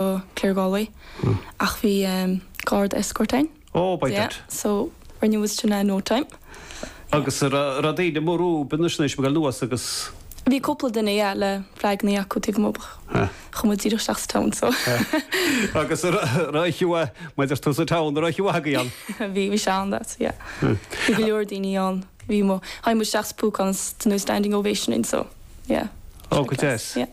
go Clare Galway ach bhí garda escort ann. Oh, by dad. Yeah, so rinne muid sin in no time. Agus an raibh daoine. Bhí cúpla duine yeah le flaganna acu taobh amuigh ach chuaigh muid díreach isteach sa town so. Agus an raibh chiúa maidir tú sa town an raibh chiúa agaí an. Bhí bhí seán that yeah. Bhí go leor daoine ann bhí mo mhaim mo seach spúcans den standing ovation in so yeah. Oh, go deas. Yeah.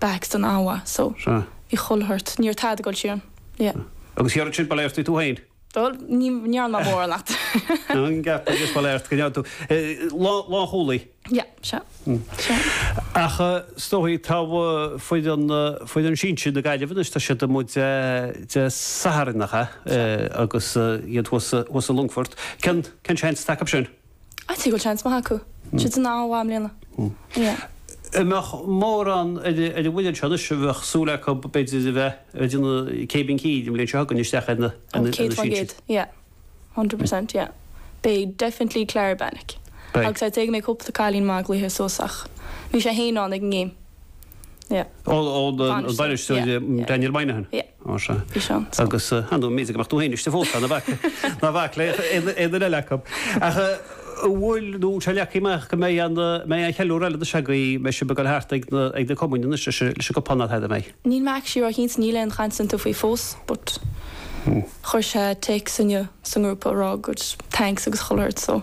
back san Omna, so. Sea. i Chill Tartan, ní raibh tada ag goil síos ann, yeah. Agus thairis sin, ba léir duit tú féin. Bhuel, ní, ní dhearna mé móran leat. An gceapann tú, is ba léir duit go ndearna tú, lán, lánchúlaí. Yeah, sea, sea. Ach is dóigh, tá foireann, foireann sinsir na Gaillimhe anois, tá siad amuigh Dé, Dé Sathairn nach ea? Sea. Agus iad thuas, thuas i Longfort. Cén, cén seans atá acu sin? I'd say go bhfuil seans maith acu. Siad an-mhaith i mbliana. Yeah. An mbeadh mórán ar an bhfoireann seo anois a bheadh súil acu b'fhéidir a bheith ar an gcéibín cinn an bhliain seo chugainn isteach ar na sinsir? Yeah. Hundred per cent, yeah. Beidh definitely Clara Benik. Beidh. Agus I'd say go mbeidh cúpla cailín eile ag goil suas ach bhí sé fhéin ann ag an ngéim. Yeah. Ó, an bainisteoir Daniel Moynihan. Yeah. Ó, sea. Bhí sé ann. Agus, ah, no, seans go mbeadh tú féin istigh fós, ná bac, ná bac le aon duine eile acu. Ach an bhfuil, nó an leagtha amach go mbeidh an, mbeidh aon cheiliúradh eile agaibh, mbeidh sibh ag dul thart ag na, ag na cumainn anois leis an, leis an gcupán ná tada, an mbeidh? Níl mé actually ró-chinnte, níl aon chaint déanta faoi fós but chuir sé téacs inniu sa ngrúpa ag rá gur thanks agus chuile shórt so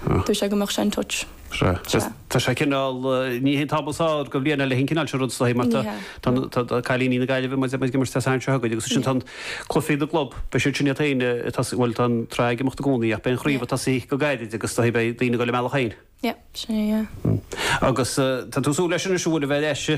dúirt sé go mbeadh sé in touch. Sea. Sea. Tá sé cineál, níl aon am sa mbliain le, haon cineál sin rud is dóigh, mar tá, tá na, tá cailíní na Gaillimhe, muid, muid ag imirt sa seans seo againn agus ansin tá an, cluichí na gclub, beidh siad sin iad féin ag tosaí, bhuel tá an tsraith ag imeacht i gcónaí ach beidh an chraobh ag tosaí go gairid agus tá, beidh daoine ag dul ina mbealach féin. Yep, sin é, yeah. Agus tá tú ag súil leis anois go bhfuil a bheith ar ais i.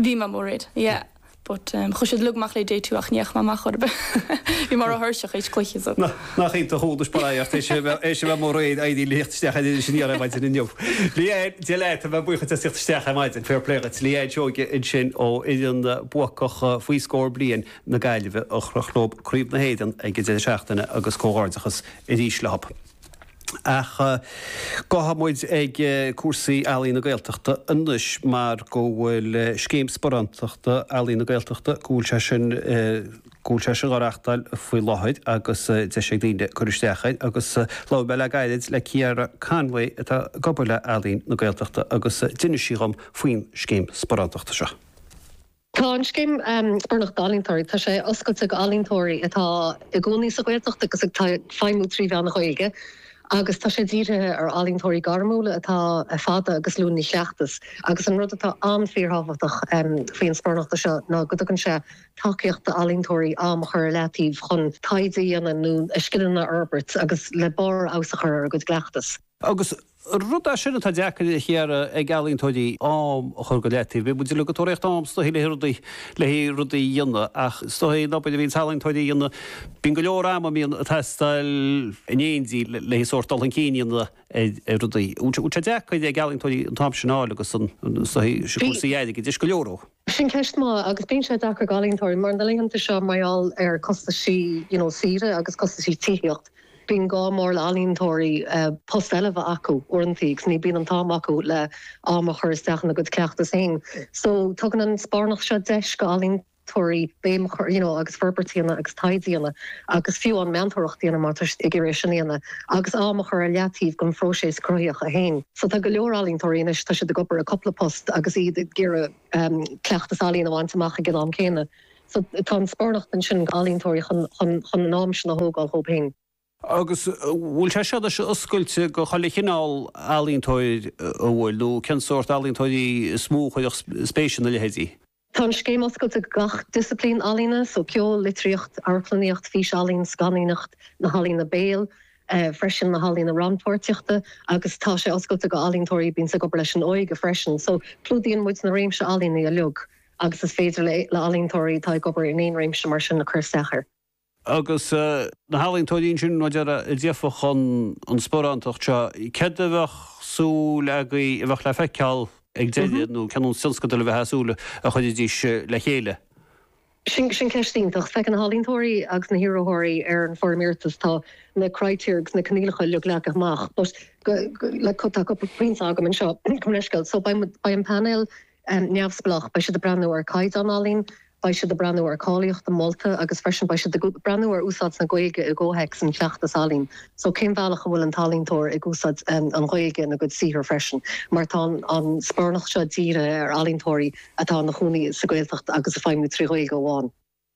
Bhí mé i Mí Mháire, yeah, but chuir siad leo amach le DJ too ach ní dheachaigh mé amach mar bhí mé ró thuirseach théis an chluiche so. Na, nach iontach dhúdais ba ea ort é sin é sin a bheith mórréid éirí liacht isteach in Inis Aniar ar maidin inniu. Leanne, Dia leat tá muid buíoch as tíocht isteach ar maidin, fair play dhuit. Leanne Seoighe ansin ó fhoireann bhuacach faoi scór bliain na Gaillimhe a chroch leo Craobh na hÉireann ag an deireadh seachtaine agus comhghairdeachas arís leo. Ach gabhfaidh muid ag cúrsaí Ealaín na Gaeltachta anois mar go bhfuil Scéim Sparántachta Ealaín na Gaeltachta, go bhfuil sé sin, go bhfuil sé sin dhá reáchtáil faoi láthair agus deis ag daoine cur isteach air. Agus labhair mé le gairid le Ciara Conway atá ag obair le Ealaín na Gaeltachta agus d'inis sí dhom faoin scéim sparántachta seo. Tá an scéim Sparánachta d'Ealaíontóirí, tá sé oscailte ag ealaíontóirí atá ina gcónaí sa Ghaeltacht agus ag feidhmiú trí mheán na Gaeilge agus tá sé dírithe ar ealaíontóirí gairmiúla atá fada agus luath ina gcleachtas agus an rud atá an-fhíorthábhachtach faoin sparánacht seo ná go dtugann sé tacaíocht d'ealaíontóirí am a chur ar leataobh chun taighde a dhéanamh nó a scileanna a fhorbairt agus le barr fheabhas a chur ar a gcuid cleachtas. Agus rud é sin atá deacair cheana ag ealaíontóirí, am a chur go leataobh. Bíonn muid uilig ag tóraíocht am stoitheadh le rudaí, le rudaí a dhéanamh, ach stoitheadh an obair a bhíonns ealaíontóirí a dhéanamh, bíonn go leor ama a mbíonn ag teastáil i ndáiríre le sórt dul chun cinn a dhéanamh ar rudaí. Bíonn sé deacair ag ealaíontóirí an t-am sin a fháil agus an stoitheadh sin, cúrsaí airgid, leis, go leor. Sin ceist mhaith, agus bíonn sé deacair ag ealaíontóirí, mar na laethanta seo, mar gheall ar costaisí you know saoire agus costaisí tithíochta, bíonn gá mór le ealaíontóirí post eile bheith acu uaireantaí agus ní bhíonn an t-am acu le am a chur isteach ina gcuid cleachtas féin. So tugann an sparánacht seo deis go ealaíontóirí béim a chur you know agus forbairt a dhéanamh agus taighde a dhéanamh. agus fiú an meantóireacht a dhéanamh má tá siad ag iarraidh é sin a dhéanamh agus am a chur ar leataobh don phróiseas cruthaitheach féin. So tá go leor ealaíontóirí anois, tá siad ag obair i gcúpla post agus iad ag iarraidh cleachtas ealaíon a bhaint amach ag an am céanna. So tá an sparánacht ansin d'ealaíontóirí chun an am sin a thógáil dhóibh féin. Agus an bhfuil sé sin oscailte go chuile chineál ealaíontóir a bhfuil, nó cén sórt ealaíontóirí is mó a chuirfeadh spéis ina leithéide? Tá an scéim oscailte go gach disciplín ealaíne, so ceol, litríocht, amharclannaíocht, fís-ealaín, scannánaíocht, na healaíona béil, freisin na healaíona rannpháirtíochta agus tá sé oscailte go ealaíontóirí a bíonns ag obair leis an óige freisin. So clúdaíonn muid na réimsí ealaíona uilig agus is féidir le ealaíontóirí atá ag obair in aon réimse mar sin cur isteach air. Agus na healaíontóirí ansin, abair a gheobhadh an an sparánacht seo, céard a bheadh súil agaibh a bheadh le feiceáil ag deireadh nó ceann an tionscadail a bheith as súil a chuirfidís le chéile? Sin sin ceist iontach. Feiceann na healaíontóirí agus na hiarrathóirí ar an foirm iarratais, tá na criteria agus na coinníollacha uilig leagtha amach but like tá cúpla pointe agam anseo go sciobtha so beidh an painéal neamhspleách. Beidh siad ag breathnú ar chaighdeán ealaíon, beidh siad ag breathnú ar cháilíocht an mholta agus freisin beidh siad ag breathnú ar úsáid na Gaeilge i gcomhthéacs an chleachtas ealaíon. So cén bealach a bhfuil an t-ealaíontóir ag úsáid an Ghaeilge ina gcuid saothar freisin mar tá an sparánacht seo dírithe ar ealaíontóirí atá ina chónaí sa Ghaeltacht agus ag feidhmiú trí Ghaeilge amháin.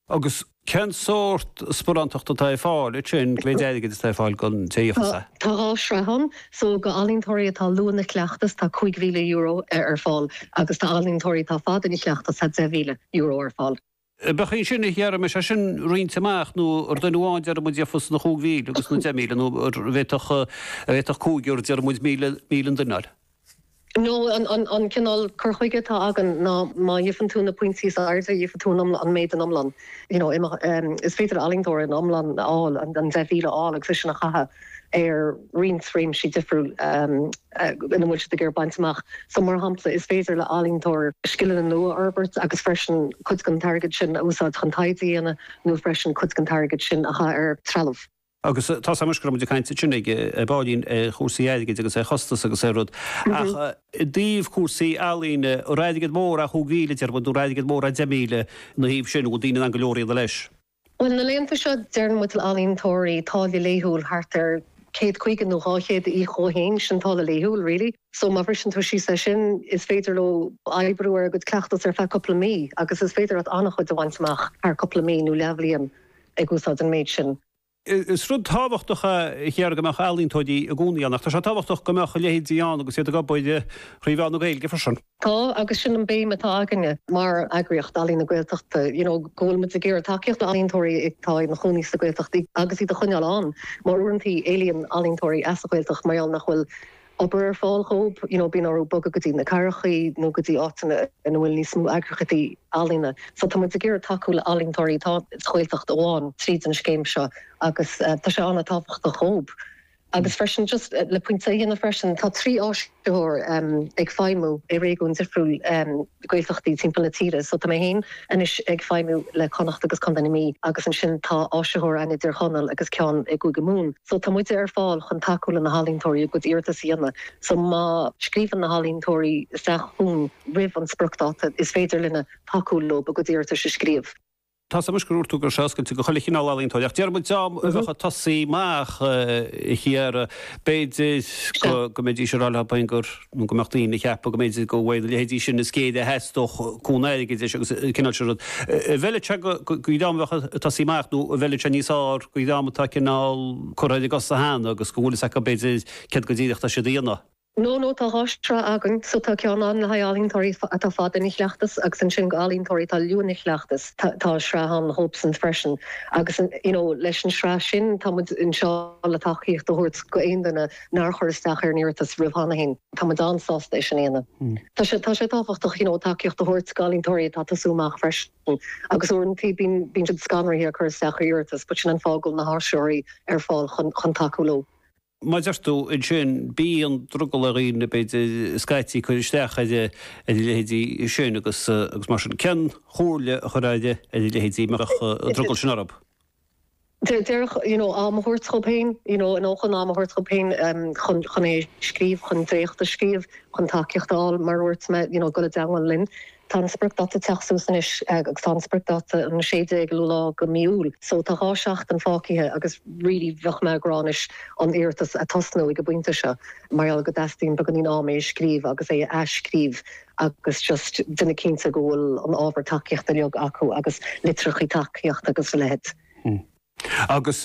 Agus cén sórt sparánachta atá ar fáil ansin, cén mhéid airgid atá ar fáil don té a dhéanfas é? Tá dhá shraith ann. So go ealaíontóirí atá luath ina gcleachtas tá €5,000 ar fáil agus tá ealaíontóirí atá fada ina chleachtas tá €10,000 ar fáil. An mbeadh ansin, déarfaimis, é sin roinnte amach nó ar duine amháin déarfaidh muid dhéanfas na cúig mhíle agus na deich míle nó an bhféadfadh, an bhféadfadh cúigear déarfaidh muid míle, míle an duine. nó an cineál cur chuige atá againn ná má gheibheann tú na pointí is airde gheibheann tú an méid in iomlán you know is féidir le ealaíontóir an iomlán a fháil an 10,000 a fháil agus é sin a chaitheamh ar roinnt réimsí difriúil ina bhfuil siad ag iarraidh baint amach so mar shampla is féidir le ealaíontóir scileanna nua a fhorbairt agus freisin cuid den t-airgead sin a úsáid chun taighde a dhéanamh nó freisin cuid den t-airgead sin a chaith ar trealamh. agus tá's agamsa go raibh muid ag caint ansin ar baillín ar chúrsaí airgid agus ar chostas agus ar rud, ach i dtaobh cúrsaí ealaíne, an airgead mór é chúig mhíle déarfaidh muid, nó an airgead mór é deich míle ina thaobh sin, nó bhfuil daoine in ann go leor a dhéanamh leis? Bhuel, na laethanta seo deireann muid le ealaíontóirí táille laethúil thart ar céad caoga nó dhá chéad a íoc dhó fhéin, sin táille laethúil really, so má bhriseann tú síos é sin is féidir leo oibriú ar a gcuid cleachtas ar feadh cúpla mí agus is féidir leat an-chuid a bhaint amach thar cúpla mí nó leathbhliain. ag úsáid an méid sin. Is rud tábhachtach a Chiara go mbeadh ealaíontóirí i gcónaí ann, ach tá sé tábhachtach go mbeadh a leithéidí ann agus iad ag obair thrí mheán na Gaeilge freisin. Tá, agus sin an béim atá againne mar eagraíocht Ealaín na Gaeltachta, you know go bhfuil muid ag iarraidh tacaíocht le ealaíontóirí atá ina chónaí sa Gaeltacht agus iad a choinneáil ann mar uaireantaí éalaíonn ealaíontóirí as an Ghaeltacht mar gheall nach bhfuil obair ar fáil dhóib, you know, bíonn orthu bogadh go dtí na cathrachaí nó go dtí áiteanna ina bhfuil níos mó eagraíochtaí ealaíona. So tá muid ag iarraidh tacú le ealaíontóirí atá sa Ghaeltacht amháin tríd an scéim seo agus tá sé an-tábhachtach dhóib. Agus freisin, just le pointe a dhéanamh freisin, tá trí áisitheoir ag feidhmiú i réigiúin difriúil Gaeltachtaí timpeall na tíre. So tá mé féin anois ag feidhmiú le Connacht agus Contae na Mí agus ansin tá áisitheoir ann i dTír Chonaill agus ceann i gCúige Mumhan. So, tá muide ar fáil chun tacú le na healaíontóirí a gcuid iarratas a dhéanamh. So, má scríobhann na healaíontóirí isteach chugainn roimh an spriocdháta, is féidir linne tacú leo a gcuid iarratais a scríobh. Tá's agamsa gur dhúirt tú go raibh sé oscailte go chuile chineál ealaíontóirí, ach déarfaidh muid dream a bheadh ag tosaí amach, a Chiara, b'fhéidir go mbeidís ag rá leo féin gur. nó go mbeadh daoine ag ceapadh go mb'fhéidir gurb iad a leithéidí sin is géire a theastódh cúnamh airgid leis agus an cineál sin rud. An bhfeileann sé go dream a bheadh ag tosaí amach, nó an bhfeileann sé níos fearr go dream atá cineál curtha ar a gcosa cheana agus go bhfuil a fhios acu, b'fhéidir, céard go díreach atá siad a dhéanamh. Nó, nó tá dhá shraith againn, so tá ceann ann le haghaidh ealaíontóirí atá fada ina chleachtas agus ansin go ealaíontóirí atá luath ina chleachtas, tá sraith ann dhóibsean freisin, agus you know leis an sraith sin tá muid anseo le tacaíocht a thabhairt go aon duine. nár chuir isteach ar an iarratas roimh cheana féin. Tá muid an-sásta é sin a dhéanamh. Tá sé tábhachtach you know tacaíocht a thabhairt d'ealaíontóirí atá ag tosú amach freisin agus uaireantaí bíonn bíonn siad scanraithe ag cur isteach ar iarratas but sin an fáth go bhfuil na háisitheoirí ar fáil chun chun tacú leo. Mar a deir tú ansin, bíonn drogall ar dhaoine b'fhéidir scaití cur isteach ar a leithéidí sin agus agus mar sin, cén chomhairle a chuirfeá ar a leithéidí a mbeadh an drogall sin orthu? deireadh, you know, am a thabhairt dóibh féin, you know, nó chun am a thabhairt dóibh féin chun, chun é a scríobh, chun dréacht a scríobh, chun tacaíocht a fháil, mar a dhúirt mé, you know, dul i dteangmháil linn. Tá an spriocdáta ag teacht suas anois agus tá an spriocdáta an 16ú lá de mí Iúil, so tá dhá seachtain fágthaithe agus really bheadh mé ag rá anois an iarratas a tosnú ag an bpointe seo mar gheall go dteastaíonn beagáinín am é a scríobh agus é a athscríobh agus just déanamh cinnte go bhfuil an ábhar tacaíochta uilig acu agus litreachaí tacaíochta agus a leithéid. Agus.